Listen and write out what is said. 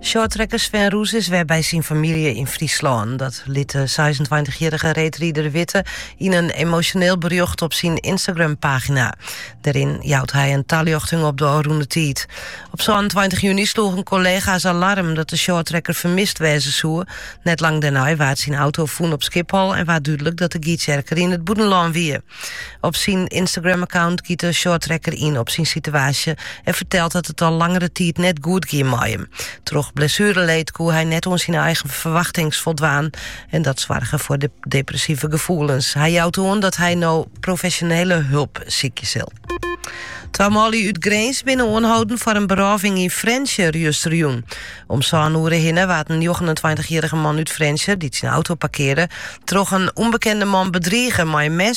Shorttrekker Sven Roes is wer by syn famylje yn Fryslân. Dat liet de 26-jarige reedrieder witte yn in emotioneel berjocht op syn Instagram-pagina. Dêryn jout hy in taljochting op de ôfrûne tiid. Op 22 juni sloegen collega's alarm dat de shorttrekker fermist wêze soe. Net lang dêrnei waard syn auto fûn op Schiphol en waard dúdlik dat de Gytsjerker yn it bûtenlân wie. Op syn Instagram-account giet de shorttrekker yn op syn situaasje en fertelt dat it al langere tiid net goed gie mei him. Troch blessureleed koe hy net oan syn eigen ferwachtings foldwaan en dat soarge foar depressive gefoelens. Hy jout oan dat hy no profesjonele help sykje sil. Twa manlju út Grins binne oanholden foar in berôving yn Frjentsjer justerjûn. Om sân oere hinne waard in 29-jarrige man út Frjentsjer, dy't syn auto parkearde, troch in ûnbekende man bedrige mei in mes